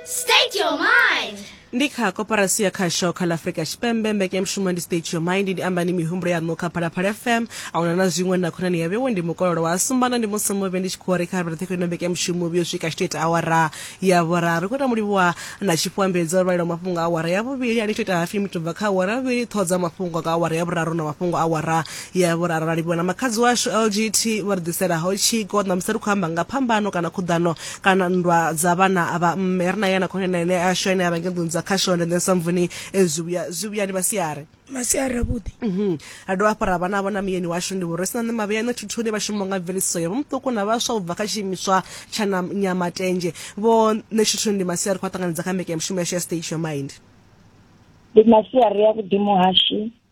State your mind. ndi kha koporasi ya khasho kha ḽa afurika tshipembe mbekanyamushumo ndi state your mind ndi ambani mihumbulo yaṋu kha phalaphala fm a huna na zwiṅwe na khonani ya vhewe ndi mukololo wa sumbana ndi musi muvhe ndi tshi khou ri kha vhurathekho ino mbekanyamushumo vhuyo swika tshito ita awara ya vhuraru ri khou ita mulivhuwa na tshifhuambedzo vhalelo mafhungo a awara ya vhuvhili ani tshi ita hafi mitubva kha awara ya vhuvhili ṱhoho dza mafhungo nga awara ya vhuraru na mafhungo a awara ya vhuraru ra livhuwa na makhadzi washu lgt vha ri ḓiselaho tshiko ṋamusi ri khou amba nga phambano kana khuḓano kana nndwa dza vhana a vha mme ri na yana khonani ene a sho ene a vha nge nḓuni dza khashonde then samvuni eh, zwi vhuya zwi vhuya ndi masiari masiari avhuḓi Mhm. ra dovha hafhu ra vha navho na muyeni washu ndi vhori sina nṋe mavhea nṋe thuthuni vha shumaho nga mveledziso ya vhomuṱuku na vhaswa u bva kha tshiimiswa tsha na nyamatenje vho nṋe thuthuni ndi masiari khou a ṱanganedza kha mbekanya mushumo yashu ya station mind ndi masiari avhuḓi muhashi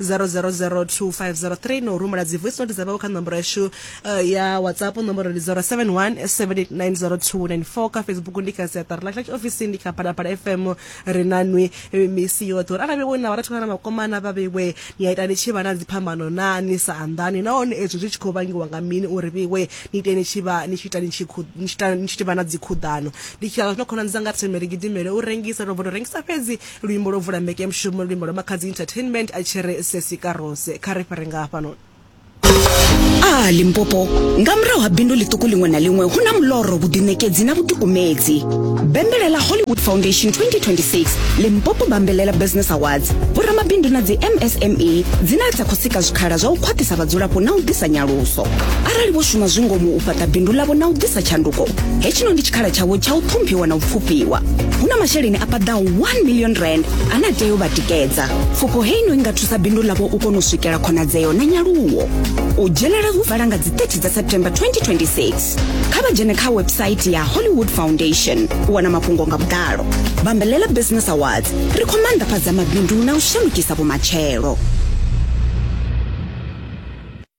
0002503 no rumela dzi voice note dza vhawe kha nomboro yashu uh, ya whatsapp nomboro ndi 0717890294 kha facebook ndi kha siaṱari ḽa church office ndi kha phalaphala fm ri na nwi eh, misi yoṱhe uri arali wo na vharathu kana makomana vha vhewe ni a ita ni tshi vha na dziphambano na ni sa anḓani nahone ezwo zwi tshi khou vangiwa nga mini uri vhewe ni ite ni tshi vha ni tshi ita ni tshi khu- ni tshi ita- ni tshi vha na dzikhuḓano ndi tshi aa zwino khonani dzanga ri themele gidimele u rengisa ro vho to rengisa fhedzi Luimbo lwo vula mbekeamushumo ndi luimbo lwa Makhadzi Entertainment a tshi ri Sesi Karose. Kha ri fhire nga hafhanoni. A Limpopo, nga murahu ha bindu ḽiṱuku ḽiṅwe na ḽiṅwe hu na muloro, vhuḓiṋekedzi na vhuḓikumedzi. Bembelela Hollywood Foundation 2026 Limpopo Bambelela Business Awards, vhoramabindu na dzi MSME dzine dza khou sika zwikhala zwa u khwaṱhisa vhadzulapo na u ḓisa nyaluso. Arali vho shuma zwi ngomu u fhaṱa bindu ḽavho na u ḓisa tshanduko, hetshino ndi tshikhala tshavho tsha u ṱhomphiwa na u pfufhiwa. hu na masheleni a paḓaho 1 million rand ane a tea u vha tikedza pfufho heino i nga thusa bindu ḽavho u kona u swikela khonadzeo na nyaluwo u dzhenela hu vala nga dzi 30 dza september 2026 kha vha dzhene kha website ya hollywood foundation u wana mafhungo nga vhuḓalo bambelela business awards ri khou maanḓafhadza mabindu na u shandukisa vhumatshelo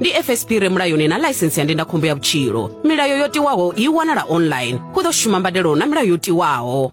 ndi fsp re mulayoni na ḽaisentsi ya ndindakhombo ya vhutshilo milayo yo tiwaho i wanala online hu ḓo shuma mbadelo na milayo yo tiwaho